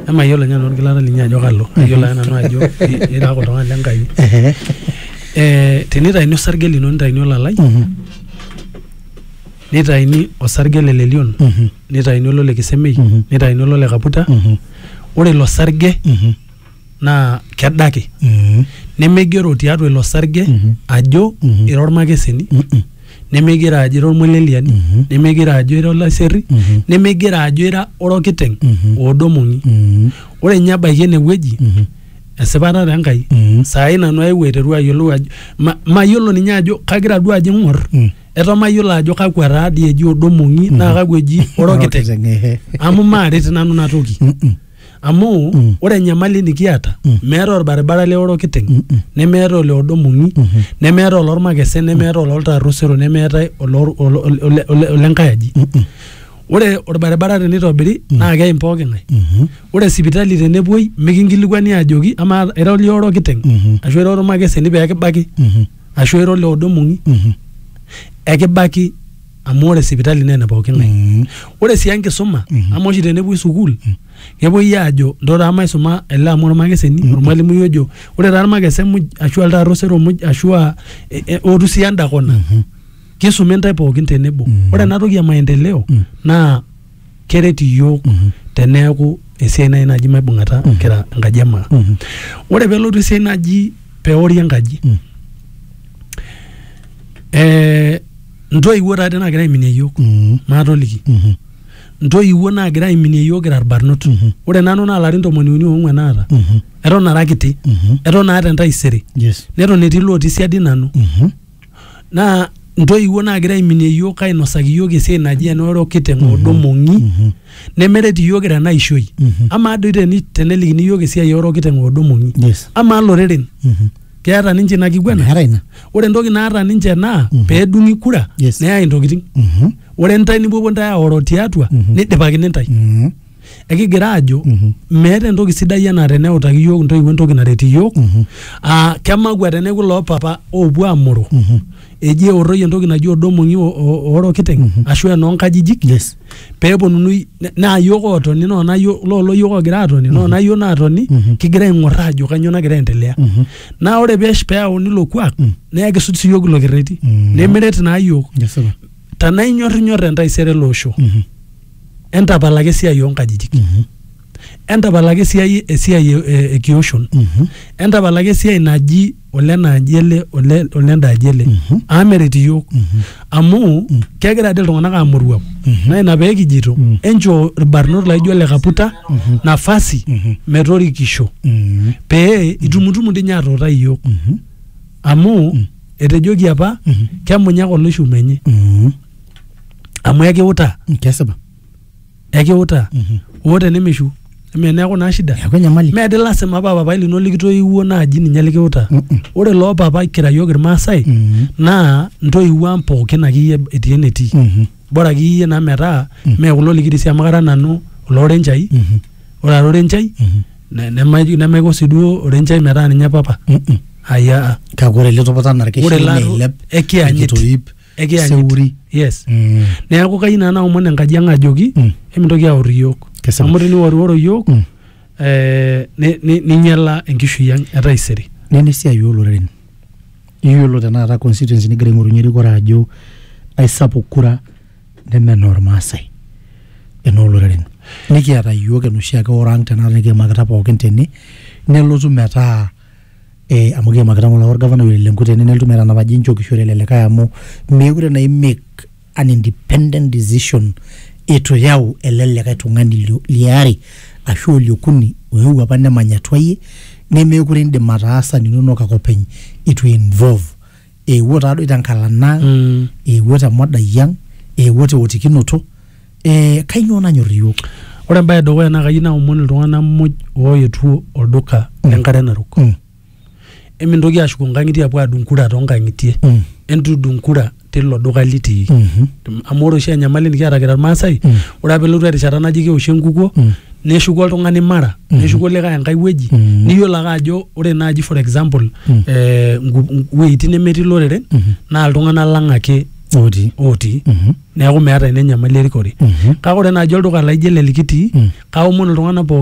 Emayiolo ninye nanu orgilata linyi ajo kalo. Ayiolo ake nanu ajo ira ake oltung'ani le Nkai. Eh, tenitaini osarge lino nitaini olalai, nitaini osarge le lelion, nitaini olole kisemei, nitaini olole kaputa, ore ilo sarge naa kedaki Mm. nemeigero tiatua ilo sarge Mhm. ajo Mhm. ira ormakeseni Mm-mm. nemeigero ajo ira ormoleliani Mhm. nemeigero ajo ira olaserri Mhm. nemeigero ajo ira orokiteng Mhm. oodomoni Mm. ore ninye ebaiki ene wueji Mhm. esipata te Enkai Mhm. saai nanu aewuo aiteru ayiolou ajo ma- mayiolo ninye ajo kagira duo ajo ing'or Mm. eto mayiolo ajo kakwa taa dii eji odomong'i naa kakwa eji orokiteng Orokiteng, ehe. amu maaret nanu ina toki Mm-mm. amu mm. ore enyamali nikiata mm. meeta orbaribara le orokiteng mm -mm. nemeeta ole odomong'i mm -hmm. nemeeta olormakese nemeeta ololtarusero nemeeta olenkae aji mm -mm. ore orbaribara tenitobiri mm. naa keim pooki ng'ae mm -hmm. ore sipitali tenepuoi mikinkilikuani ajoki amaa era oli orokiteng mm -hmm. ashu era ormakeseni pee kibaki mm -hmm. ashu era ole odomong'i mm -hmm. ekibaki amu ore sipitali naa ene pooki ng'ae Mm. ore sii enkisuma Mhm. amu oshi tenepuoi sukuul kepuoi aajo ndo taa maisuma ele amu ormakeseni ormalimui ojo ore taa irmakese muj ashu altaar osero muj ashu a e- e- ootu sii enda kona Mhm. kisumi intae pookin tenebo Mm. ore ena toki e maendeleo Mm. naa keret iyiook mhm. teneeku esiai nai naji maibung'ata mhm. kira enkaji emaa mhm. ore pelotu esiai naji peori enkaji eh, ntoiwuo taate naagira aiminie iyiook maatoliki ntoiwuo naagira aiminie iyiook kira irbarnot ore nanu naa larin tomoni uni oong'uan naata eton ara kiti eton aata entaisere neton etii lotii siadi nanu naa ntoiwuo naagira aiminie iyiook ainosaki iyiook esiai naji ena orokiteng mm -hmm. odomong'i mm -hmm. nemeret iyiook tena ishoi mm -hmm. amaa doi teni, tenelikini iyiook esiai orokiteng odomong'i yes. amaa loreren mm -hmm. keeta ninche ina kiguana ore entoki naata ninche naa mm -hmm. peedung'i kura yes. neyai intokitin mm -hmm. ore ntae nipuopuo ntae aoro tiatua mm -hmm. nidipakini ntae mm -hmm. ekigira aajo meeta entoki sidai anaa teneutaki iyiook intoiwuo entoki naret iyiook aa kemakua teneeku loo papa oopuo aamoro eji eorroi entoki naji odomong'i o- o- oorokiteng ashu enoonkajijik Yes. peeponunui ne- naa iyiook ootoni noona iyiook loolo iyiook oogira aatoni noona iyiook naatoni kigira aing'orr aajo kanyoo nagira aendelea naa ore peesh peyauni ilo kuak naa ekisuj sii iyiook ilo kerreti nimiret naa iyiook Kesipa. tenaa inyorrinyorr entaisere ele osho entapalaki esiai oonkajijik Mhm. entapalaki esiai esiai e- e- ekioshon Mhm. entapalaki esiai naji ole naaji ele ole ole ndaaji ele Mhm. amu meret iyiook Mhm. amu kegira ade iltung'anak amoruau Mhm. naa ina pee kijito Mhm. enchoo irbarnot laijo ole kaputa Mhm. nafasi Mhm. metorikisho Mhm. pee itumutumu dii ninye atuutai iyiook Mhm. amu etejoki apa Mhm. kemunyak oloishume enye Mhm. amu ekiutaa Mm, kesipa ekiutaa Mhm. oo tenemishu eme neeku naa shida eeku enyamali meedi lasima paa papai lino likitoiwuo naaji ninye likiutaa Mm-mm. ore loo papa kira yiok irmaasai Mhm. naa ntoiwuo ang pookin akeyie etii enetii Mhm. bora akeyie naa metaa Mm. mee kulo likirisi amu kara nanu oloorenchai Mhm. ore ara orenchai Mhm. ne- nemaiko nemaiko sii duo orenchai metaa ninye papa Mm-mm. aya kake ore ele topoto anaa ore irkeshin laa neilep ekianyit nikitoip Ekiyanyit. seuri yes Mm. neeku kayieu naa naomon enkaji ang ajoki Mm. emintoki aor iyiok Kesipa. amu teniworiworo iyiok Mm. eh, ni- ni- ninyiala enkishui ang etaisere nena esiai ooloreren iyiolo tenakata constituency nigira aing'orunye erikore ajo aisapuk kura neme enoormaasai enooloreren nikiata iyiook enoshi ake orang tenakata nikiimakita pookin tene nelotu metaa eh, amu kiimakita ng'ole orgavanai ole Lenku tene nelotu metanapa ajo inchokishore ele likae amu meekure naa imake an independent decision itu iyau ele likae tung'ani lio- liare ashu oliokuni oewuo apa nemany atua iyie nemeekure indim ataasa ninonok ake openy itu involve eewuo taadoi tenkalana ang Mm. eewuo temodai ang eewuo teotikinoto eh, kainyoo nanyor iyiook ore embae edukuya naa kayieu naomon iltung'anak muj ooetuo olduka le nkare narok Mm. emintoki ashuko nkang'itie apuo adung kura toonkang'itie Mm. entudung kura tilo duka litii Mhm. amu ore oshi enyamali nikiata kira irmaasai Mm. ore apa elotu erishata naji keoshi enkukuo Mm. neshuku oltung'ani mara neshuku likae enkae wueji Mhm. niyiolo ake ajo ore naaji for example Mhm. eh, ngu- wueitin nemetii loreren Mhm. naa iltung'anak lang ake otii otii Mhm. neeku meeta ina enyamali erikore Mhm. kake ore naaji olduka laijo ele likitii Mhm. kaomon iltung'anak pooki